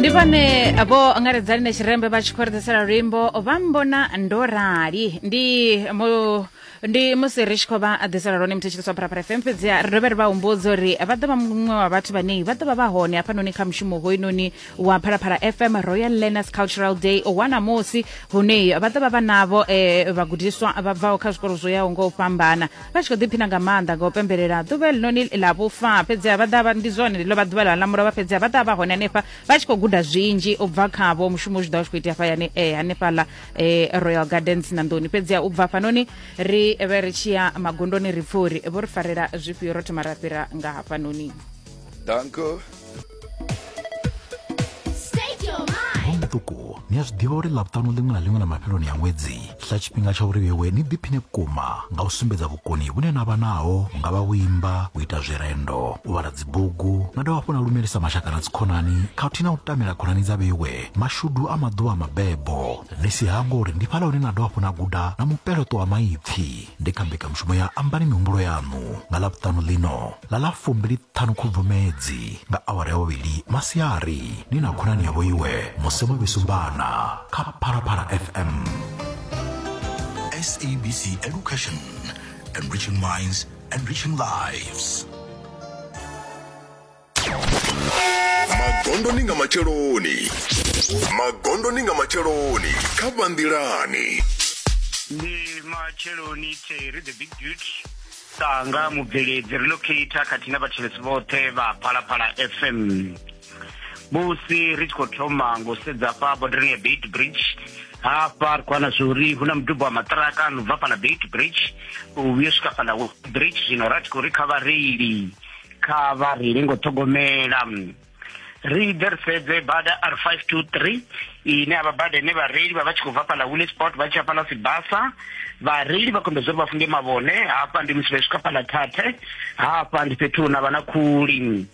ndi vhane vho angaredza line tshirembe vha tshi khou ri ḓisela luimbo vha mbona ndo rali ndi mu ndi musi ri tshi khou vha ḓisela lone muthetshelesi wa pharapara fm fhedziha ri dovhe ri vha humbudza uri vha ḓo vha muṅwe wa vhathu vhane vha ḓo vha vha hone hafhanoni kha mushumo hoyunoni wa pharapara fm royal learners cultural day wa namusi hune vha ḓo vha vha navho um vhagudiswa vha bvaho kha zwikolo zwo yaho nga u fhambana vha tshi khou ḓiphina nga maanḓa nga u pembelela ḓuvha elinoni ḽa vhufa fhedziha vha ḓa ndi zwone ḽo vha ḓuvha ḽa lamula vha fhedziha vha ḓa vha hone hanefha vha tshi khou guda zwinzhi u bva khavho mushumo zwi ḓa u tshi khou itea fhayani e eh, hanefhaḽa eh, royal gardens na nḓuni fhedziha u bva hafhanoni ri vhe ri tshi ya magondoni ri pfha uri vho ri farela zwifhio ro thoma ra fhira nga hafhanoni danko muṱuku ni a zwi ḓivha uri ḽavhuṱanu ḽiṅwe na ḽiṅwe na mafheloni a ṅwedzi ḽa tshifhinga tsha uri vhewe ni ḓiphine vhukuma nga u sumbedza vhukoni vhune na vha naho hu nga vha u imba u ita zwirendo u vhala dzibugu na dovha hafhu na lumelisa mashaka na dzikhonani khathihi na u tamela khonani dza vhewe mashudu a maḓuvha a mabebo ni si hangwe uri ndi fhaḽa hune na dovha hafhu na guda na mupeleṱo wa maipfi ndi kha mbekanyamushumo ya ambani mihumbulo yaṋu nga ḽavhuṱanu ḽino ḽa ḽa fumbiliṱhanu khubvumedzi nga awara ya vhuvhili masiari ni na khonani yavho iwe musi vho vhisumbana kha phalaphala fm sabc education enriching minds enriching lives magondoni nga matsheloni magondoni nga matsheloni kha vhanḓilani ndi matsheloni theri the big beauty Sanga mubveledzi relocator khathihi na vhathetshelesi vhoṱhe vha Phalaphala FM musi ri tshi khou thoma ngo sedza fha bodarani ya Beit Bridge hafha ri khou wana zwori hu na mudubo wa maṱiraka no bva fhala Beit Bridge u vhuya swika fhala Bridge zwino ra tshi khou ri kha vhareili kha vha reile ngo ṱhogomela ri ḓirisedze bada r 523 ine avha bada ine vhareili vha vha tshi khou bva fhaḽa wile sport vha tshi ya fhaḽa sibasa vhareili vha kombedza uri vha funge mavhone hafha ndi musi vha swika fhaḽa thathe hafha ndi fhethu huna vha na khuli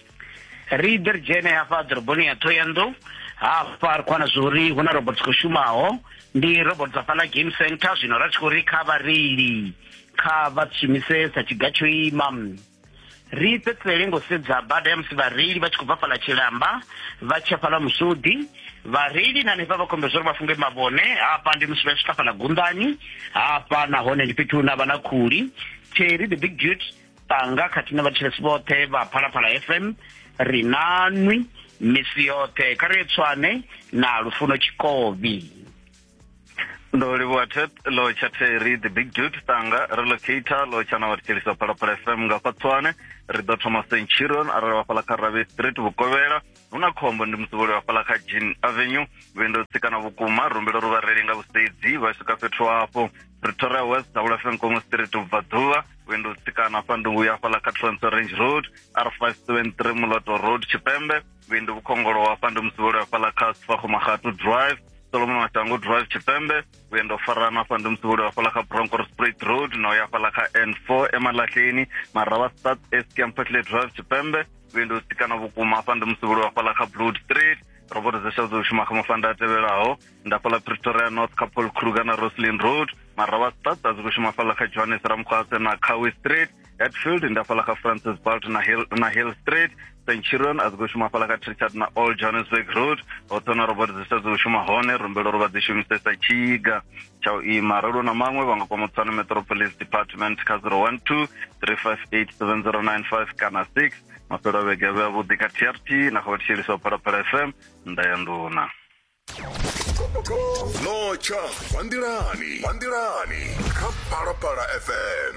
ri ḓe ri dzhene hafha ḓoroboni ya thoyando hafha ri khwana zwori hu na robot khou shumaho ndi robot dza fhaḽa game center zwino ra tshi khou ri kha vhareili kha vha shumise sa tshiga tsho ima ri fhedzisele ngo sedza bada ya musi vhareili vha tshi khou bva fhala tshilamba vha tshiya fhala musudi vhareili na hanefha vha khombe zwo ri vha funge mavhone hafha ndi musi vha swika fhala gundani hafha nahone ndi fhethu hune vha na khuli theri the big dut tanga khathihi na vhathetshelesi vhoṱhe vha phalaphala fm ri nanwi misi yoṱhe kha ri tswane na lufuno tshikobi ndo livhuwa tet lo tsha theri the big dude tanga ri locator lo tsha na vhathetshelisa phalaphala fm nga fatswane ri ḓo thoma centurion arali vhafhaḽa kha rabe street vhukovhela hu na khombo ndi musivholi vhafhaḽa kha jean avenue vhuendo tsikana vhukuma rumbelo ri vhareli nga vhusedzi vha swika fhethu hafho pretoria west davula fm komo street vhubvaḓuvha vhuendo tsikana fha ndungu ya fhaḽa kha transfer range road r 573 muloto road tshipembe vhindu vhukhongolo hafha ndi musivholi hafhaḽa kha sifakhomakhatu drive solomon mashango drive tshipembe vhuendo farana hafha ndi musivholi hafhaḽa kha broncor sprit road na uya hafhaḽa kha n four emalahleni marava start estiam fatley drive tshipembe vhuendo u sikana vhukuma hafha ndi musivholi hafhaḽa kha blood street robot zesha dzo shuma kha mafanda a tevhelaho nda fhaḽa pretoria north kha paul kruger na roslin road marava start a dzi khou shuma fhaḽa kha johannes ramkhwase na cowe street Hatfield nda fhala kha Francis Balt na Hill na Hill Street Centurion a zwi shuma fhala kha Trichard na Old Johannesburg Road hoṱhe na robot dzi sa dzi shuma hone rumbelo ro vha dzi shumisesa tshiga tsha u ima ralo na maṅwe vha nga kwama Tswana Metro Police Department kha 012 3587095 kana 6 mafhelo a vhege vhe avhuḓi kha TRT na kha vhathetshelisi wa Phalaphala FM nda ya nduna notsha vha nḓilani vha nḓilani kha Phalaphala FM